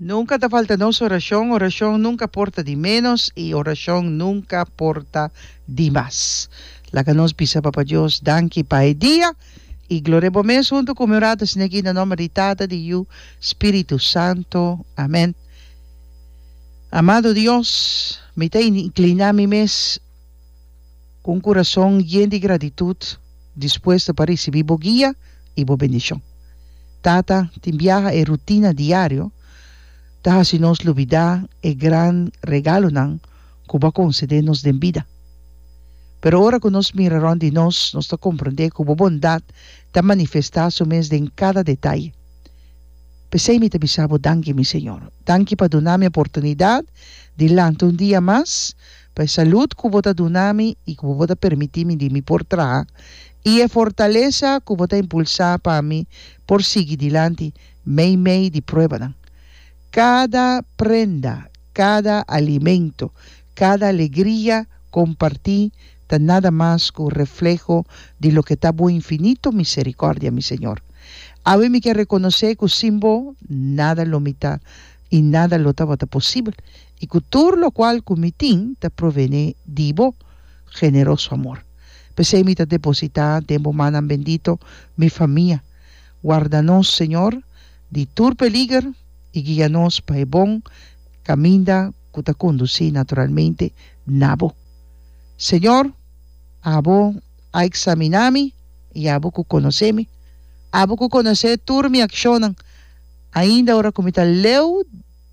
Nunka ta falta nos orashon, orashon nunka por ta di ménos i orashon nunka por ta di mas. Laga nos bisa Papa Dios danki pa e dia i gloria bo mes huntu ku mi orata sini aki na nòmber di Tata, di Yu, Spiritu Santu. Amèn. Amado Dios, mi ta inkliná mi mes. Ku un kurason yen di gratitut dispuesto pa risibí Bo guia i Bo bendishon. Tata, tin biaha e rutina diario ta hasi nos lubidá e gran regalonan ku Bo a konsedé nos den bida. Pero ora ku nos mira rònt di nos, nos ta komprondé ku Bo bondat ta manifestá su mes den kada detaye. P'esei mi ta bisa Bo danki, mi Señor. Danki pa duna mi oportunidat di lanta un dia mas, pa e salud ku bo ta duna mi i ku bo ta permití mi di mi por traha, i e fortalesa ku bo ta impulsá pa mi por sigui dilanti meimei di pruebanan. Kada prenda, kada alimento, kada alegria kompartí ta nada mas ku refleho di loke ta bo infinito miserikòrdia, mi Señor. Awe mi ke rekonosé ku sin bo nada lo mitá i nada lo tabata posibel. I ku tur lokual ku mi tin ta provené di bo generoso amor. P'esei mi ta depositá den bo mannan bendito mi famia. Warda nos, Señor, di tur peliger i guia nos pa e bon kaminda ku ta kondusí naturalmente na bo. Señor, abo a eksaminá mi i abo ku konosé mi. Abo ku konosé tur mi akshonnan, ainda ora ku mi ta leu.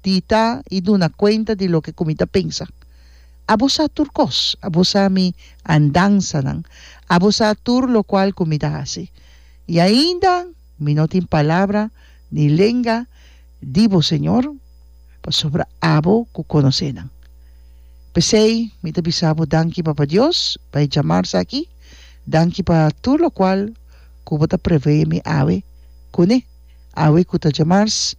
Tita i duna kuenta di loke ku mi ta pensa. Abo sa tur kos. Abo sa mi andansanan. Abo sa tur lokual ku mi ta hasi. I ainda mi no tin palabra ni lenga di bo, Señor, pasobra abo ku konosé nan. P'esei mi ta bisa bo danki, Papa Dios, pa e djamarsa aki. Danki pa tur lokual ku bo ta preveé mi awe. Kuné? Awe ku ta djamars.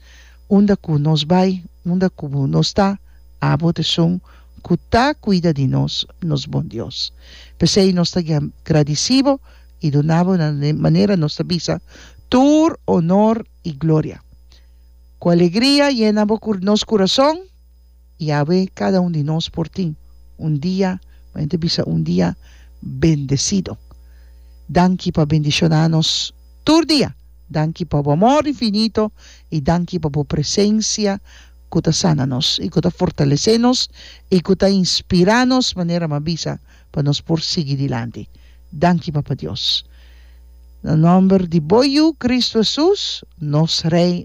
Unda ku nos bai, unda ku bo nos ta, abo ta esun ku ta kuida di nos, nos Bon Dios. P'esei nos ta gradisí bo i duna bo na manera nos ta bisa tur onor i gloria. Ku alegria yena bo nos kurason. y awe cada un di nos por tin un dia, mi bai ta bisa un dia bendecido. Danki pa bendiciona nos tur dia, danki pa bo amor infinito y danki pa bo presencia cu ta sana nos y cu ta fortalece nos y cu ta inspira nos manera mi a bisa pa nos por sigui dilanti. Danki Papa Dios. Na nomber di bo Yu Cristo Jesus, nos Rey.